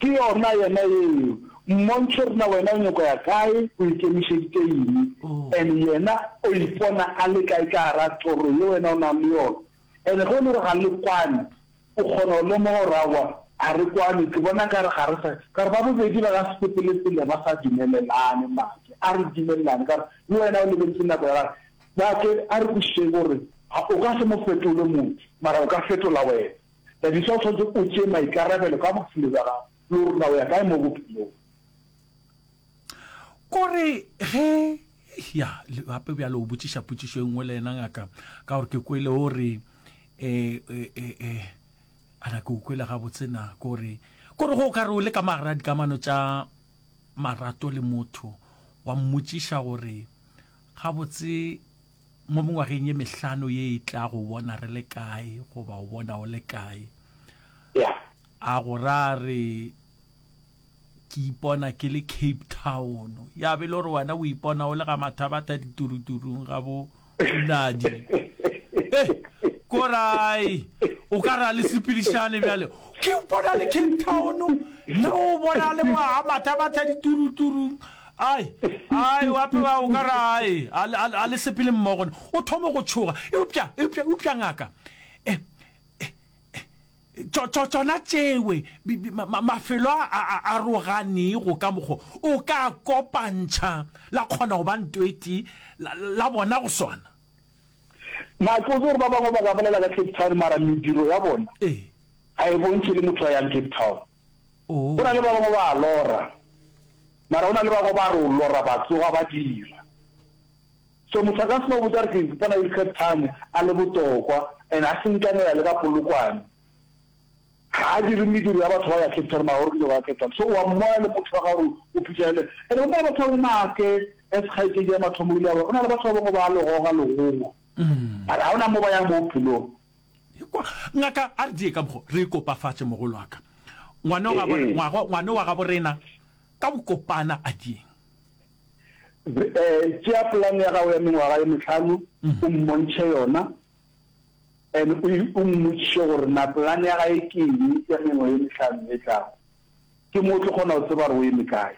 Ke yona yena yeo. Mmontšhe gore na wena o nyako ya kae, o ikemišeditše eng, and yena o ipona a le kae ka gara toro ye wena o nang le yona. And ge e le gore ga le kwane, o kgona go lemoga gore aowa, ga re kwane, ke bona nkare ga re sa, ka gore ba bobedi ba ka se sepele pele ba sa dumelelane. Make, a re dumelelane, ka gore le wena o lebeletše nako ya gagwe. Make, a re kwešišeng gore o ka se mo fetole motho, mara o ka fetola wena. Thabiso, o swanetše o tšee maikarabelo ka bophelo bja gago le gore na o ya kae mo bophelong. Ko re ge, ya, le gape bjalo o botšiša potšišo e nngwe le yena ngaka, ka gore ke kwele o re, e, e, e, e, a na ke o kwele gabotse na, ko re, ko re ge o ka re o le ka magar'a dikamano tša marato le motho, wa mmotšiša gore, gabotse, mo mengwageng ye mehlano ye e tla go bona re le kae goba o bona o le kae a go ra re ke ipona ke le cape town ya be le gore wena o ipona o le ga mathabatha dituruturung ga bo nadi eh, korai o ka ra le sepedišane bjale ke ipona le cape town nna o bona le mo ga mathabatha dituruturung Ai, ai, o apewa o ka re ai, a, a, a le sepele mmogo. O thoma go tšhoga. Eupša, eupša, eupša ngaka. Eh, eh, eh, tšo, tšo, tšona tšewe, bi, bi, ma, ma, mafelo a, a, a aroganego ka mokgo o ka a kopantšha, la kgona go ba ntoetee, la, la bona go swana. Na ke botse gore ba bangwe ba ka bolela ka Cape Town mara mediro ya bona Ee. ga e bontšhe le motho a yang Cape Town. Go na le ba bangwe ba a lora, mara go na le ba bangwe ba re o lora ba tsoga ba dira. So motho a ka se no botsa re ke ipona e third time a le botokwa and a senkanela le ka Polokwane. Ga a dire mediro ya batho ba ya Cape Town mara o rile go ya Cape Town. So o a mmona e le motho wa ga gore o phutha ele and go na le batho ba bangwe maake as kgaetšedi ya Mathomo o ile a ba go na le batho ba bangwe ba a legoga legogo mara ga go na mo ba yang mo bophelong. Ekwa, ngaka, a re die ka mokgo, re ikopafatše, mogolo wa ka. Ngwane wa gabo, ngwago, ngwane wa gabo rena, ka go kopana, a dieng. Eh, tšea polane ya gago ya mengwaga ye mehlano, o mmontšhe yona, and o, o mmotšiše gore na polane ya gae ke eng ya mengwe ye mehlano e tlago. Ke mo o tlo kgona go tseba gore o eme kae.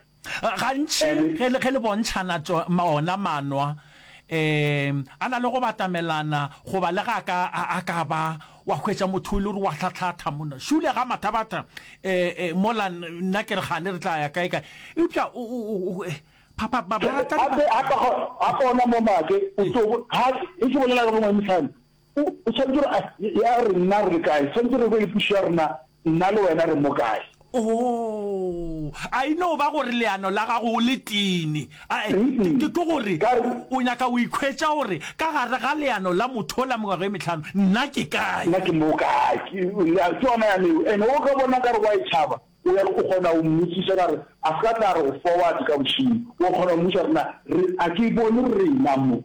Gantši ge le, ge le bontšhana tšo, ma, ona manwa, ee, a na le go batamelana, goba le ge a ka, a, a ka ba, wa hwetša motho o ile gore wa hlathatha monna, šule ga mathabatha, ee, ee, mola nna ke re kgane re tla ya kae kae, eupša o, o, o, o, ee, ba, ba, ba, ba rata. Gape, gape, gape ona momake o tlo, ga, ge ke bolela le bo Ngangihlane, O swanetše gore a ya re nna re le kae, swanetše re be le pušo ya rena, nna le wena re mo kae. Oh, a e no ba gore leano la gago o le tini. Ae, ke, ke, ke gore o nyaka go ikhwetša gore ka gare ga leano la motho o la mengwaga e mehlano, nna ke kae. Nna ke mo kae. Ke, ya, ke yona ya leo. Ene o ka bona ka re wa e tšhaba, o ya, o kgona go mmotšiša ka re a se ka tla re go forward ka bošego. O kgona go mmotšiša gore na re, a ke bone rena mo.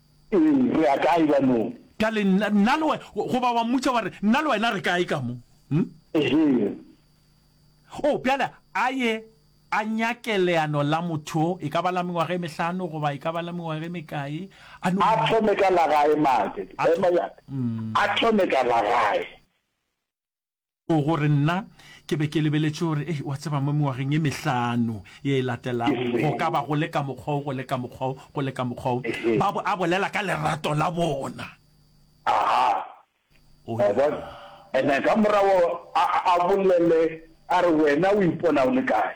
Ee, re ya kae ka mo? Ka le nna, nna le wena. Goba wa mmotša wa re, Nna le wena re kae ka mo? Hm? Ehe. Oh, bjale a ye a nyake leano la motho, e ka ba la mengwaga e mehlano goba e ka ba la mengwaga e mekae, a no. A thome ka la gae, Mage. Ema, ya ka. A thome ka la gae. O gore nna ke be ke lebeletše gore, ei, wa tseba, mo mengwageng e mehlano ye e latelago, go ka ba go le ka mokgwa wo, go le ka mokgwa wo, go le ka mokgwa wo. Ba bo a bolela ka lerato la bona. Aha. O ya bona? Ene ka morago a, a bolele, a re, Wena o ipona o le kae?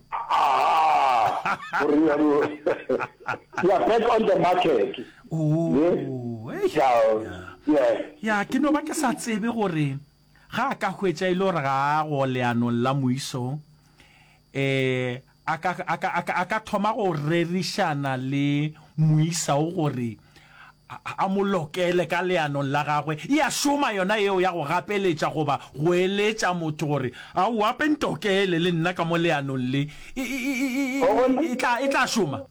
Ah, you are back on the market. Oh, yes. Yeah. Yeah. Yeah, ke no ba ke sa tsebe gore ga a ka hwetša ile e gore ga a go leanong la moiso eh a ka a ka a ka thoma go rerišana le moisa o gore a mo lokele ka leanong la gagwe, e a šoma yona yeo ya go gapeletša goba go eletša motho gore, Aowa, pe ntokele le nna ka mo leanong le. E, e, e, e, e, O bona? e tla, e tla šoma.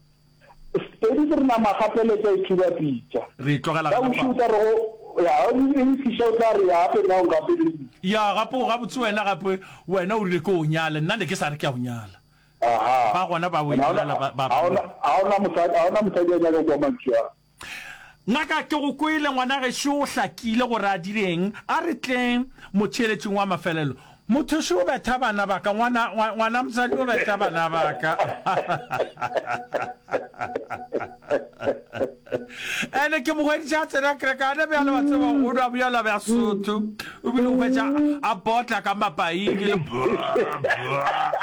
Sepedi ke re nama a gapeletša e thuba pitša. Re tlogela Ka gona bošego fa. o tla re go, Ya, o e e nkgiša, o tla re, Ya, gape nna o ngapeleditše. Ya, gape o gabotse wena, gape wena o rile ke o nyale, nna ne ke sa re ke a o nyala. Ba gona ba bo Israela ba ba bangwe. Ga go na mosadi, ga go na mosadi a nyaka kwa mantšu a. Ngaka, ke go kwele, ngwana gešo o hlakile gore a direng. A re tle motheeletšing wa mafelelo. Mothoši o betha bana ba ka, ngwana, ngwana mosadi o betha bana ba ka. Ene ke mo hweditše a tsena kerekana bjale, wa tseba, o nwa bjala bja Sotho, o bile o hwetša a botla ka mapaing le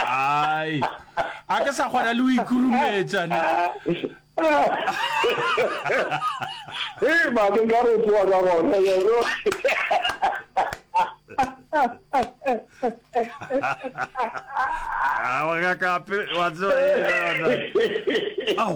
ai, a ke sa kgona le o ikurumetša ne. Hei mane nka re tsoa ka gona yeno. Ah, wa ka kape, wa tseba yena. Au.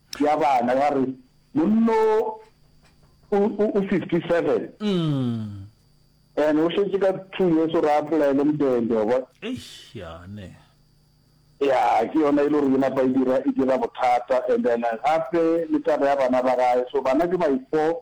ya bana ya re monno o o 57 and o shetse ka two years o re apolaele mdende wa bona eish ya ne ya ke yona e le gore e napa e dira e dira bothata and then gape le taba ya bana ba gae so bana ke by four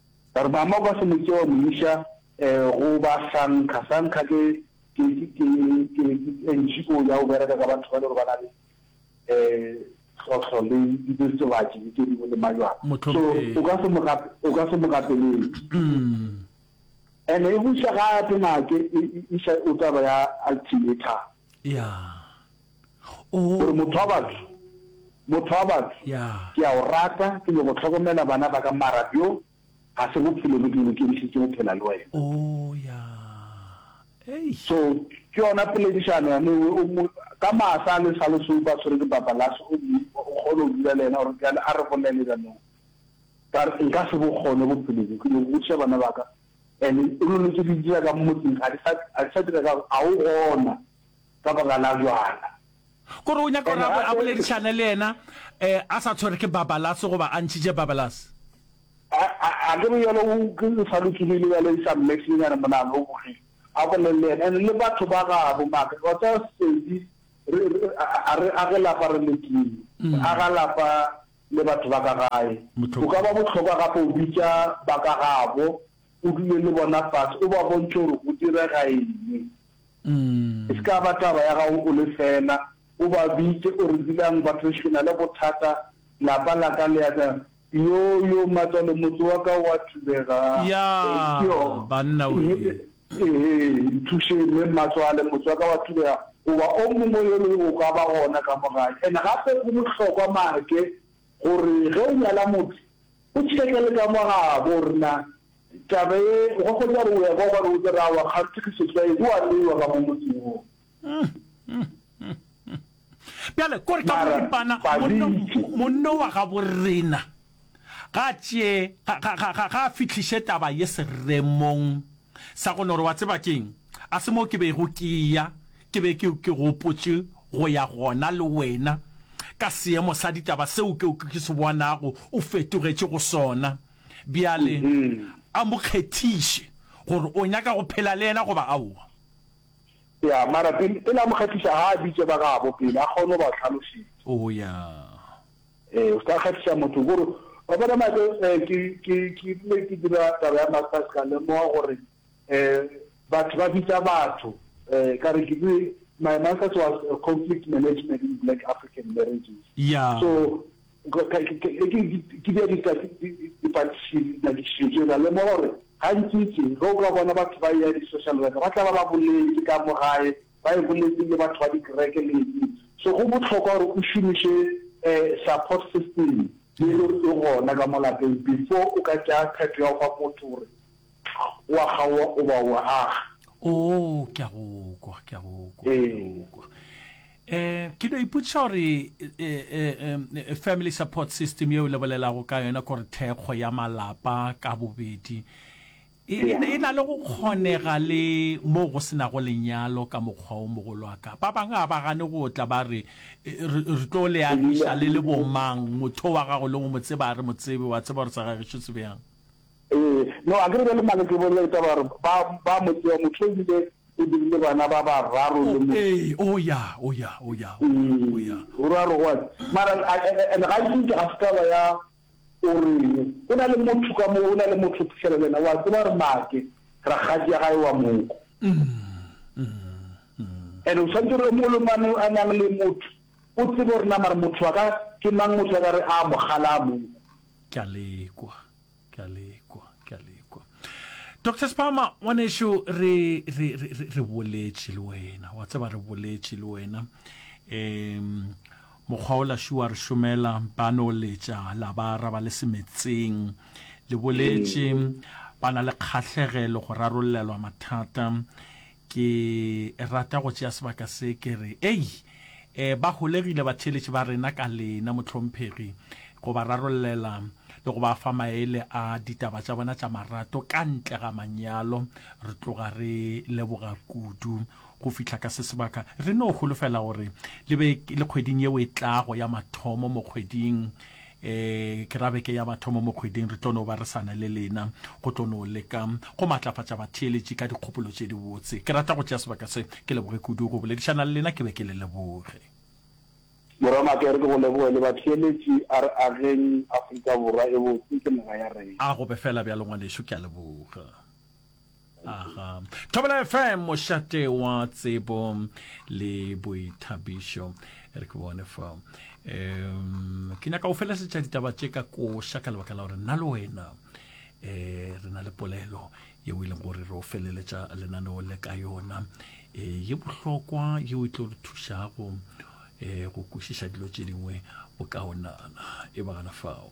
Ba re mama o ka se mo tšee wa mo iša go ba Sankha. Sankha ke NGO ya go bereka ka batho ba e le gore ba na le tlhohlo le diritibatši le tše dingwe le majwala. So o ka se mo o ka se mo gapeletše. And-e e go iša gape ngake e iša o taba ya ultimatum. Yeah. O. O motho wa batho, motho wa batho, Ya. ke a o rata, ke nyoko hlokomela bana ba ka mara bjo ga se bophelo bjo ke bolokedišitše go phela le wena. O. Ya. Eish. So, ke yona poledišano ya mewe, o mo, ka maasa a le sa lo soupa a tshwere ke babalase, o mo, o kgone go dula le yena, gore bjale a re bolele bjanong. Ka re, nka se bo kgone bophelo bjo, ke nyoko godiša bana ba ka, and o lo le tše di dira ka mo motseng, ga di sa, ga di sa dira ka gore ga o gona, ka baka la bjala. Kore o nyaka gore a boledišane le yena a sa tshwere ke Babalase goba a ntšhitše Babalase. Akere bjale o sa lokilile bjale e sa mme senyenyane monagano o bogile a bolele le yena and le batho ba gabo maka wa tsa sedi re a re age lapa re le team re aga lapa le batho ba ka gae o ka ba botlhokwa gape o bitša ba ka gabo o dule le bona fase o ba bontšhe gore go direga eng. E se ka ba taba ya gago o le fela, o ba bitše o re, Dulang batho gešo, ke na le bothata, lapa la ka le ya ka. Yo, yo, matswalo, motse wa ka o a thubega. Ya, banna wee. Ee, nthušeng, me, mmatswale, motse wa ka o a thubega. Goba o mongwe yo le o ka ba gona ka mo gae. And gape go bohlokwa, Marke, gore ge o nyala motho, o tšheke le ka mo gabo gore na Taba ye, o ka hwetša gore o ya kwa gona o tla re, Aowa, kganthe ke setswai, o a neiwa ka mo motseng wo. Bjale, ko re ka boripana, monno wa gabo rena ga a tšee, ga, ga, ga, ga, ga a fihliše taba ye seremong sa gona, gore, Wa tseba ke'ng? A se mo ke bego ke ya, ke be ke, ke gopotše go ya gona le wena, ka seemo sa ditaba seo ke, ke se bonago o fetogetše go sona. Bjale, a mo kgethiše, gore o nyaka go phela le yena goba aowa. Ya, mara pele, pele a mo kgethiša, ga a bitše ba gabo pele, a kgone go ba hlalošetša. Oo, ya. Ee, o se ka kgethiša motho, ko re, Wa bona, Mike, ee, ke, ke, ke rile ke dira taba ya Masters, ka lemoga gore, ee, batho ba bitša batho, ee, ka re ke dire, my Masters was Conflict Management in Black African Marriages. Ya. So, Ke bea dipatlisišo tše, ra lemoga gore gantšintši ge o ka bona batho ba eya di-social worker ba tla ba ba boletše ka mo gae, ba e boletse le batho ba dikereke le eng. So go bohlokwa gore o šomiše support system e le gore e gona ka mo lapeng before o ka tšea qeto ya go fa motho gore wa kgaowa o ba o aga. Oo, ke a go kwa, ke a go kwa, ke a go kwa. Um ke no ipotšiša gore um family support system yeo le bolelago ka yona kore thekgo ya malapa ka bobedi e, e, e na le go kgonega le moo go senago lenyalo ka mokgwa o mogolo a ka ba bangwe ga ba gane go tla ba re e, re re tlo le agiša le le bomang motho wa gago le go mo tseba re mo tsebe wa tseba gore sa gagišo se bjang Ee, no, akere bjale mane ke bolela ditaba gore ba, ba mo tseba, motho o bile o dirile bana ba bararo le Oh, mo. ee, o ya, o ya, o ya, o ya, o ya. Ee, o ra gore what? Mara, a, a, a, and ga nke ga se taba ya o reng, go na le motho ka mo, go na le motho o phihlela le yena, o a tseba gore Make, rakgadi ya gae wa moko. And o tshwanetse gore mo le mane a nang le motho, o tsebe gore na mara motho wa ka ke mang, motho a ka re a mogala a moko. Ke a lekwa. ke a lekwa ke a lekwa dr spama ngwaneso re re re re boletše le wena wa tseba re boletše le wena um mokgwa o laši wa re šomela ba no letša la ba araba le semetseng le boletše ba na le kgahlegelo go rarollelwa mathata Ke rata go tšea sebaka se ke re, Ei! E, ba holegile batheeletši ba rena ka lena, mohlomphegi, go ba rarollela le go ba fa maele a ditaba tša bona tša marato ka ntle ga manyalo. Re tloga re leboga kudu go fihla ka se sebaka. Re no holofela gore le be le kgweding yeo e tlago ya mathomo mo kgweding e ke ra beke ya bathomo mo kgweding re tlo no ba re sana le lena go tlo no leka go matlafatša batheeletši ka dikgopolo tše dibotse ke rata go tšea sebaka se ke leboge kudu go boledišana le lena ke be ke le leboge Morwa Makere ke go leboge le batheeletši a re ageng Afrika Borwa e botse ke naga ya rena. A go be fela bjalo ngwanešu ke a leboga. Aha. Thobela FM mošate wa tsebo le boithabišo re ke bone fa um ke nyaka o felesetša ditaba tše ka koša ka lebaka la gore nna le wena um re na le polelo yeo e leng gore re o feleletša lenaneo le ka yona um ye bohlokwa yeo e tlo re thušago um go kwešiša dilo tše dingwe bokaonana e bagana fao